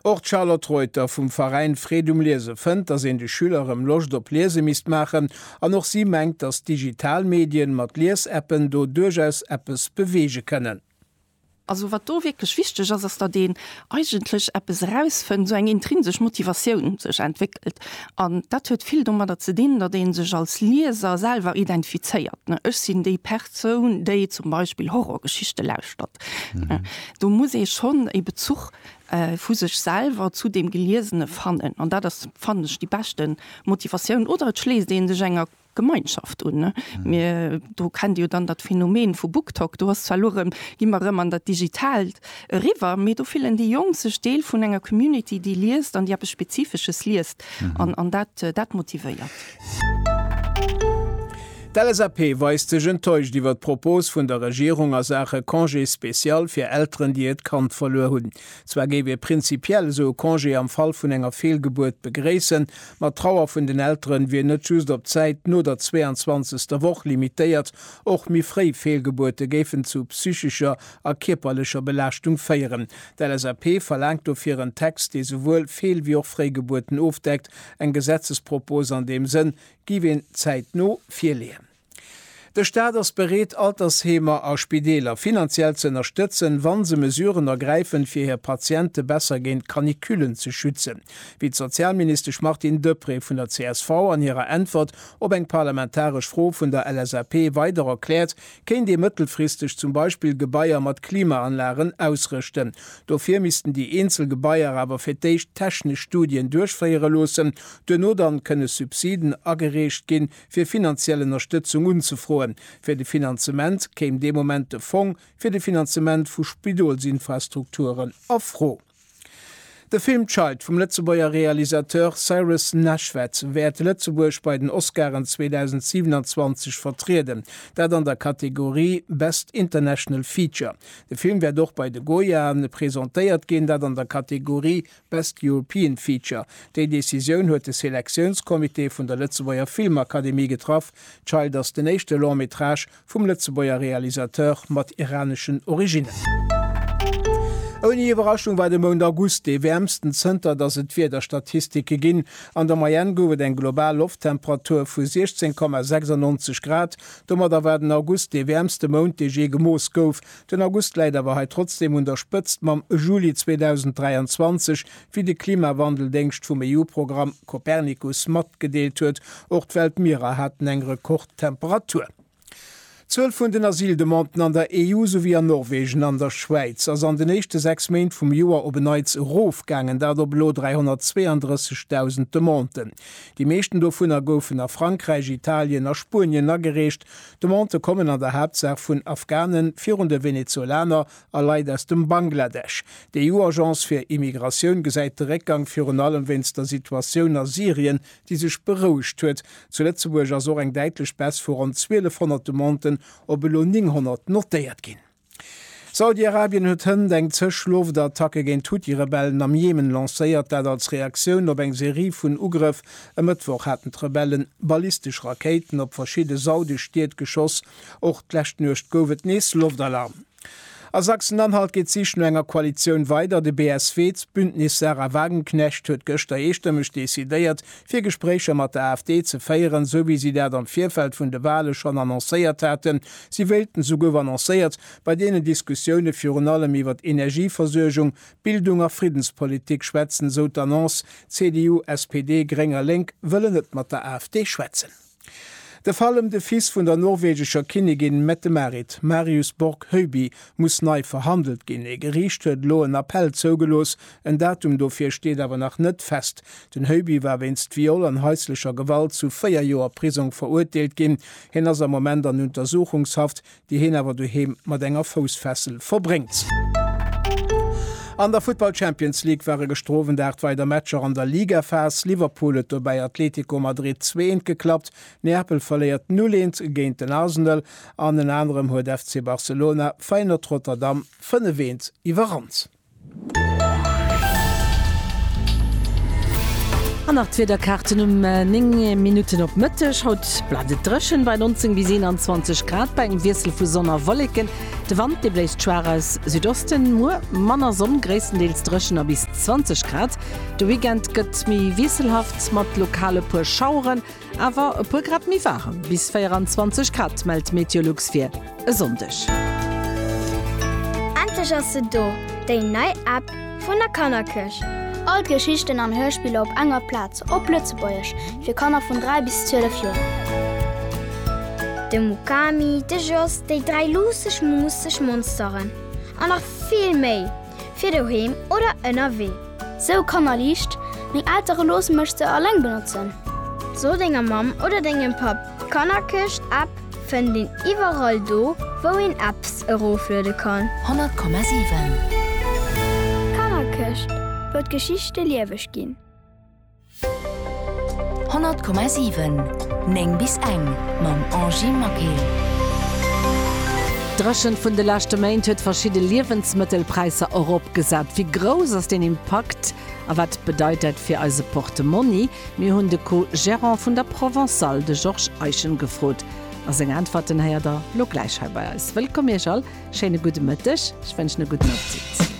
Och d'Charlotte Reuter vum Veräin Freed um Liese fënnt, datt een de Schüler erëm Loscht op Liese misst maachen an och si mengt, datt digital Medien mat Liesappen do duerchaus eppes beweege kënnen. Also wat do wierklech wichteg ass, ass datt een eigentlech eppes erausfënnt, esou eng intrinsesch Motivatioun sech entwéckelt. Welt. An dat huet vill domadder ze dinn, datt ee sech als Lieser selwer identifizéiert, ne, Ech sinn déi Persoun, déi zum Beispill Horrorgeschichte lauschtert. Do muss ee schonn e Bezuch vu sech selwer zu deem Geliesene fannen. An dat ass, fannen ech, déi beschte Motivatioun. Oder et schléisst ee sech enger Gemeinschaft un. Mir do kennt jo dann dat Phänomen vu BookTok, do ass zwar elo erëm, gi mer erëm an dat Digitaalt eriwwer, mee do fillen déi Jonk sech Deel vun enger Community, déi liest an déi eppes Spezifesches liest an an dat dat motivéiert. D'LSAP weist sech enttäuscht iwwer d'Propos vun der Regierung a Saache Congé spécial fir Elteren, déi hiert Kand verluer hunn. Zwar géif ee prinzipiell esou e Congé am Fall vun enger Feelgebuert begréissen, ma d'Trauer vun den Elteren wier net just op d'Zäit no der 22. Woch limitéiert, och méi fréi Feelgebuerte géifen zu psychescher a kierperlecher Belaaschtung féieren. D'LSAP verlaangt dofir en Text, dee souwuel Feel wéi och Fréigebuerten ofdeckt. Eng Gesetzespropos an deem Sënn géif een zäitno virleeën. De Staat ass bereet, Altersheemer a Spideeler finanziell ze ënnerstëtzen, wa se Mesuren ergräifen, fir hir Patiente besser géint d'Canicullen ze schützen, wéi d'Sozialministesch Martine Deprez vun der csv an hirer Äntwert op eng parlamentaresch Fro vun der LSAP weider erkläert, kéint ee mëttelfristeg zum Beispill Gebaier mat Klimaanlagen ausrëschten. Dofir missten déi eenzel Gebaier awer fir d'éischt technesch Studien duerchféiere loossen, duerno dann kënne Subsiden agereecht ginn, fir finanziell Ënnerstëtzung unzefroen. Fir de Finanzement kéim dee Moment de Fong fir de Finanzement vu Spidolsinfrastrukturen a Fro. De Film Child vum Lëtzebuerger Realisateur Cyrus Nashved wäert Lëtzebuerg bei den Oscaren 2027 vertrieden, dat an der Kategorie Best International Feature. De Film wäert och bei de Goyaen presentéiert ginn, dat an der Kategorie Best European Feature, Déi Decisioun huet de Selektiounscomité vun der Lëtzebuerger Filmakademie getraff. Child ass den éischte Long Métrage vum Lëtzebuerger Realisateur mat iraneschen Originnen. Ouni Iwwerraschung war de Mount August dee wäermsten zënter datt et Wiederstatistike ginn. An der Moyenne gouf et eng global Lofttemperatur vu 16,96 Grad. Domadder war den August dee wäermste Mount dee jee gemooss gouf. Den August läit awer hei trotzdeem un der Spëtzt mam Juli 2023, wéi de Klimawandel-Déngscht vum EU-Programm Copernicus matgedeelt huet. Och d'Weltmierer haten eng Rekordtemperatur. D'Zuel vun den Asyldemanden an der EU, souwéi an Norwegen an der Schwäiz, ass an den éischte sechs Méint vum Joer op en Neits erofgaangen, dat op elo 332.000 Demanden. Déi meeschten dovunner goufen a Frankräich, Italien a Spuenien agereecht. D'Demandë kommen an der Haaptsaach vun Afghanen, virun de Venezuelaner a Leit aus dem Bangladesch. D'EU-Agence fir Immigratioun gesäit de Réckgang virun allem wéinst der Situatioun a Syrien, déi sech berouegt huet. Zu Lëtzebuerg ass och eng däitlech Baisse vu ronn 1.200 Demanden op elo 900 notéiert ginn. Saudi-Arabien huet hënt eng zeg Loftattacke géint d'Huthi-Rebellen am Jemen lancéiert. Dat als Reaktioun op eng Serie vun Ugrëff. E Mëttwoch haten d'Rebellen ballistesch Rakéiten op verschidde saudesch Stied geschoss. Och d'lescht Nuecht gouf et nees Loftalarm. A Sachsen-Anhalt geet d'Sich no enger Koalitioun weider. De BSW, d'Bündnis Sarah Wagenknecht, huet gëschter eestëmmeg decidéiert, fir Gespréicher mat der AfD ze féieren, sou wéi si dat am Virfeld vun de Wale schonn annoncéiert haten. Si wéilten esouguer annoncéiert, bei deenen Diskussioune virun allem iwwer d'Energieversuergung, Bildung a Friddenspolitik schwätzen, esou d'Annonce. CDU, SPD, Gréng a Lénk wëllen net mat der AfD schwätzen. De Fall ëm de Fils vun der norwegescher Kinnigin Mette-Marit, Marius Borg Høiby, muss nei verhandelt ginn. Ee Geriicht huet elo en Appell zougelooss, En Datum dofir steet awer nach net fest. Den Heuby war wéinst Viol an haislecher Gewalt zu véier Joer Prisong verurteelt ginn. Hien ass am Moment an Untersuchungshaft, déi hien awer doheem mat enger Foussfessel verbréngt. An der Futtball-Champions League ware gëschter Owend 8 weider Matcher an der Ligaphas. Liverpool huet dobäi Atletico Madrid zweeënt geklappt, Neapel verléiert 0, 1 géint den Arsenal an ënner anerem huet FC Barcelona Feyenoord Rotterdam 5, 1 iwwerrannt. An nach d'Wiederkaarten um 9 Minutten op Mëtteg. Haut bleift et dréchen bei 19 bis 21 Grad bei engem Wiessel vu Sonn a Wolleken. De Wand dee bléist schwaach aus Südosten. Muer manner Sonn, gréisstendeels dréchen a bis 20 Grad. De Weekend gëtt méi wiesselhaft mat lokal e puer Schaueren. Awer e puer Grad méi waarem, bis 24 Grad, mellt d'Meteolux fir e Sonndeg. Endlech ass se do, déi nei App vun der Kannerkierch! All d'Geschichten an Hörspiller op enger Plaz, op Lëtzebuergesch, fir Kanner vun 3 bis 12 Joer. De Mukami, de Jos, déi dräi luusseg, muusseg Monsteren an nach vill méi! fir doheem oder ënnerwee. Sou Kanner liicht, Meng Eltere loosse mech se alleng benotzen. So denger Mamm oder dengem Papp, d'Kannerkëscht App fënnt een iwwerall do wou een Apps erofluede kann. 100,7. D'Kannerkëscht, wou d'Geschichte lieweg ginn. 100,7 9 bis eng mam Angie Maquet. D'Dréchent vun de leschte Méint huet verschidde Liewensmëttelpräisser eropgesat. Wéi grouss ass deen Impakt a wat bedeit dat fir eise Portemonni? Mir hunn de Co-Gérant vun der Provençale, de Georges Eischen, gefrot a seng Äntwerten héiert der lo gläich hei bei eis. Wëllkomm Iech all, schéine gudde Mëtteg, ech wënschen e gudden Appetit.